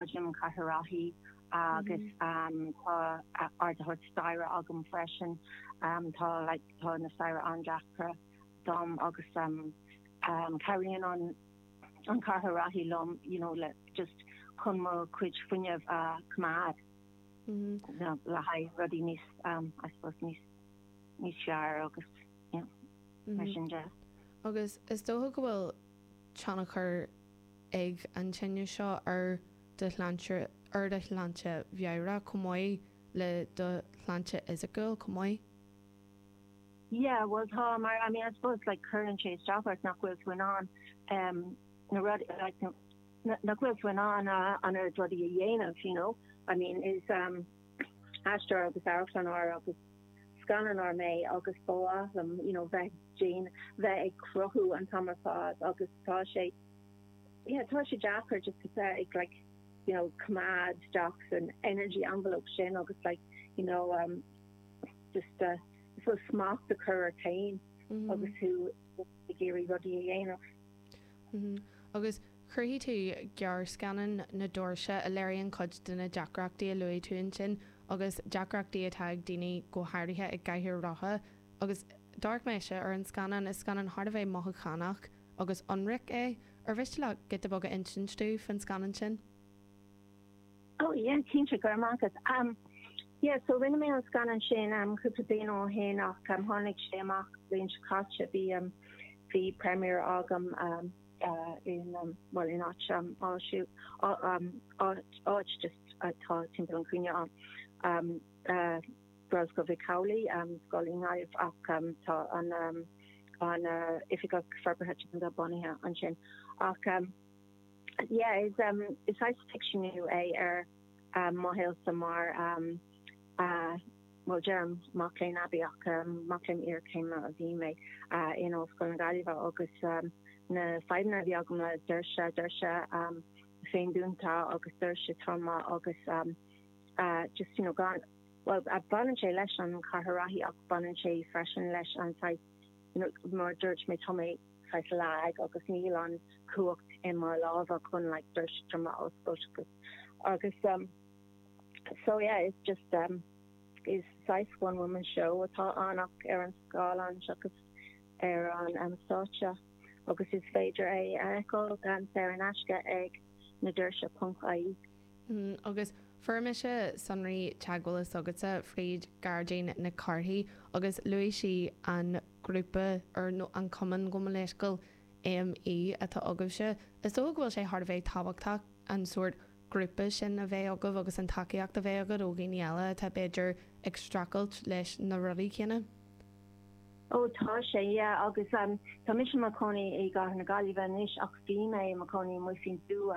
em cathaoir rothaí agus tá ardaitheoir staighre agam freisin. Tá like tá na staighre an-deacra dom agus cabhraíonn an cathaoir rothaí liom you know le just chun mo chuid fuinnimh a choimeád le haghaidh rudaí níos I suppose níos níos fearr agus yeah mar sin de. Agus is dócha go bhfuil tionchar ag an tinneas seo ar do shláinte, ar do shláinte mheabhrach chomh maith le do shláinte fhisiciúil chomh maith. Yeah, bhuel tá, mar I mean I suppose like cuireann sé isteach ort nach bhfuil tú in ann em na rudaí like nach bhfuil tú in ann an oiread rudaí a dhéanamh you know I mean is em aisteoir agus amharclannóir agus scannánóir mé agus ba mhaith liom you know bheith déan bheith ag cruthú an t-am ar fad agus tá sé yeah tá sé deacair just a bheith ag like you know coimeád isteach san energy envelope sin agus like you know um just uh, I suppose smacht a chur ort féin agus tú ag iarraidh rudaí a dhéanamh. Agus Chruthaigh tú gearrscannán na doirse a léiríonn cuid de na deacrachtaí a luaigh tú ansin agus deacrachtaí atá ag daoine go háirithe i gcathaoir rotha agus d'amharc mise ar an scannán, is scannán thar a bheith mothúchánach agus ionraic é. Ar mhiste leat giota beag a insint domh faoin scannán sin? Oh yeah cinnte, go raibh maith agat. Am yeah so rinne mé an scannán sin am cúpla bliain ó shin ach am tháinig sé amach bliain seo caite bhí am bhí premiere agam am bhuel, in áit áisiúil, áit just atá timpeall an chúinne ann, Gaelscoil Mhic Amhlaigh, scoil i nGaillimh ach tá an oifigeach forbartha teanga bunaithe ansin. Ach yeah, is saghas ficseanú é ar mo shaolsa mar a Bhuel, deirim mac léinn aibí ach mac léinn iarchéime a bhí mé in Ollscoil na Gaillimhe agus na fadhbanna a bhí agam le doirse, doirse féindúnta agus doirse troma agus just, you know, gan, bhuel, baineann sé leis an chathaoir rothaí ach baineann sé freisin leis an saghas, you know, mar a dúirt mé, tá mé saghas lag agus níl an chumhacht i mo lámha chun like doirse troma a oscailt agus, um, So yeah, it's just um is saghas one woman show atá ann ach ar an scáileán seachas ar an um stáitse agus is féidir é a fheiceáil gan saor in aisce ag na doirse ponc ie. Agus fuair mise sonraí teagmhála s'agatsa fríd Gearóidín Nic Cárthaigh agus luaigh sí an grúpa or nó an cumann gabh mo leithscéal, ME, atá agaibhse. Is dócha go bhfuil sé thar a bheith tábhachtach an sórt ghrúpa sin a bheith agaibh agus an tacaíocht a bheith agat ó dhaoine eile atá, b'fhéidir, ag streachailt leis na rudaí céanna. Ó tá sé, yeah. Agus tá mise i mo chónaí i gCathair na Gaillimhe anois ach bhí mé i mo chónaí i Muigh Phinnsúa.